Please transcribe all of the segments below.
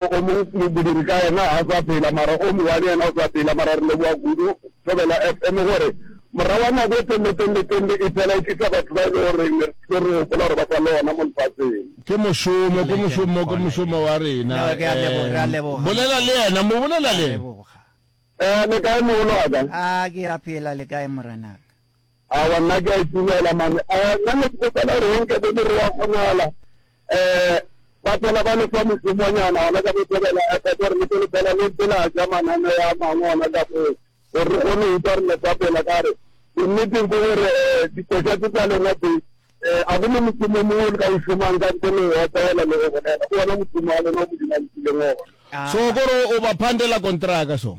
O mong modiri ka yena ga a sa phela mara o mongwe yena o sa phela mara re leboga kudu Thobela FM gore morago ga nako e telele telele telele e phela e tlisa batho ba e le gore ne re tlo re gopola gore ba sa le gona mo lefatsheng. Ke mošomo, ke mošomo, ke mošomo wa rena. Bolela le yena, mo bolela le yena. Eh, le kae mogolo wa ka? Ah, ke a phela, le kae morenaka? Aowa nna ke a itumela mane eh nna ne ke kgopela gore go nke bo more wa kgonagala eh ba phela ba lefa mošomonyana gona ka botebela eh gore le pele fela le ntse la ja manane ya mangwe gona ka foo gore re kgone go utlwa re lefa pela ka re nneteng ke gore eh dikoša tse tsa lena tse eh a go ne mošomo mongwe o le ka o šomang ka ntle le wa tsela le go bolela ke ona mošomo wa lena o modimo a nkileng ona so kore o ba phandela kontraka so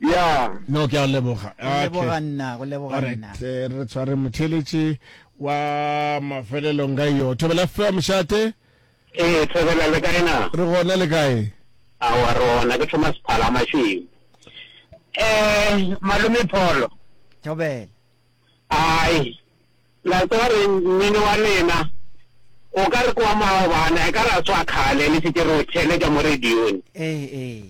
Yeah. No, ke a o leboga. Go Okay. leboga nna, go leboga Alright, nna. eh, re tshware motheletši wa mafelelong ka yo thobela ffa mošate Ee, Thobela le kae na? re gona le kae Aowa re ona ke Thomas Phala Mashweu. Eh, Malome Pholo. Thobela. Ai, La tseba re mmino wa lena o ka re ke wa maobana e ka re a swa khale le se ke re o theletša mo radiong. Ee ee.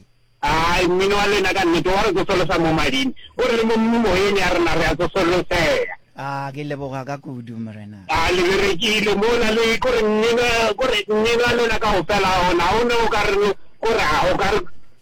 Hai mmino wa lena ka nnete wa re tsosolosa mo mading o re le mo moyeng ya rena re a tsosolosega. Aa ke leboga ka kudu morena. A le berekile mola le ko re mmino ko re mmino wa lena kaofela ona o ne o ka re ko re a o ka re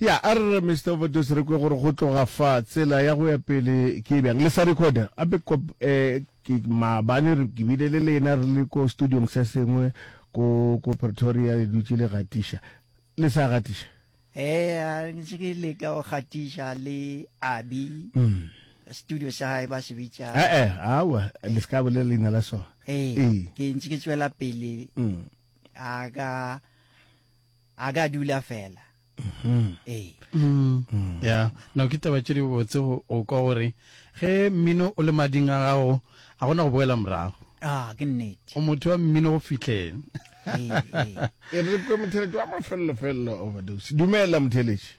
Ya, a re re Mister Overdose re kwe gore go tloga fa tsela ya go ya pele ke e bjang. Le sa recorder, a be kop, eh, ke maabane re ke bile le lena re le ko studiong se sengwe ko, ko Pretoria le dutše le gatiša. Le sa gatiša? Eh, a re ntse ke leka go gatiša le Abi, studio sa gae ba se bitša. Eh, eh, aowa, le se ka bolela leina la sona. Eh, Ee. ke ntse ke tšwela pele, a ka, A ka dula fela. Ee. Ya, no ke taba tše di botse go go kwa gore ge mmino o le mading a gago a gona go boela morago. A, ke nnete. O motho wa mmino go fihleng. Ee, ee. E re kwe motheletši wa mafelelo-felelo, overdose. Dumela, motheletši.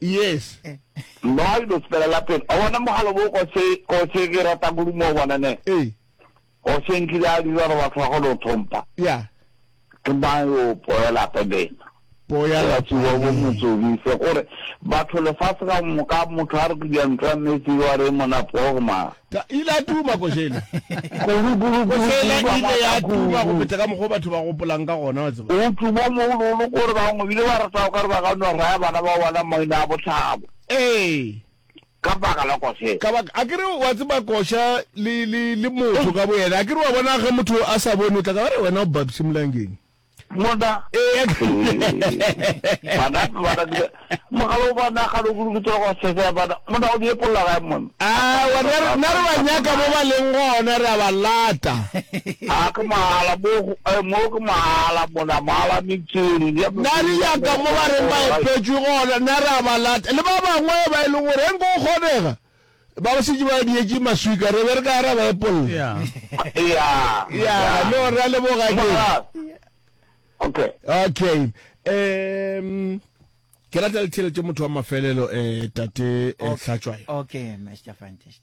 Yes. Mma wa dilo sepelela pelo. Wa bona mogalo bo kose kose ke rata kudu mo bona ne. Ee. O se nkile a dira re batho ba go lo thompa. Ya. Ke ba yo poela pebena. Poya la tsuwa bo motsodi se gore batho le fa se ka moka motho a re ke di antwa metse wa re mona pogma. Ka ile a tuma, košela. Košela e ile ya tuma go feta ka mokgwa o batho ba gopolang ka gona, wa tseba. O tuma mo go lolo gore bangwe bile ba rata o ka re ba ka no raya bana ba bona maina a bohlabo. Ee. Ka baka la košela. Ka baka, a ke re wa tseba koša le, le, le motho ka boyena, a ke re wa bona ge motho a sa bone o tla ka ba re wena o babsimolangeng. mona bana bana dira mogalo ba na ga lo go ke tswa go sese ya bana mona o die polla ga mona a wa ne re ne re ba nyaka mo ba leng gona re ba lata a ke mahala mo eh, mo ke mahala mona mahala mitsiri ya na re nyaka mo ba reng ba epetswe gona na re ba lata le ba bangwe ba e leng gore eng go kgonega Ba ba šetše ba dietše maswika, re be re ka ya ra ba epolla. Ya. Ya. Ya, no ra leboga ke. Okay. Okay. Um ke rata le theletše motho wa mafelelo eh tate eh, Hlatswayo. Okay, Mr. Fantastic.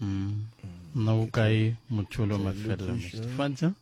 Mm. Nna o kae motho lo mafelelo Mr. Fanta?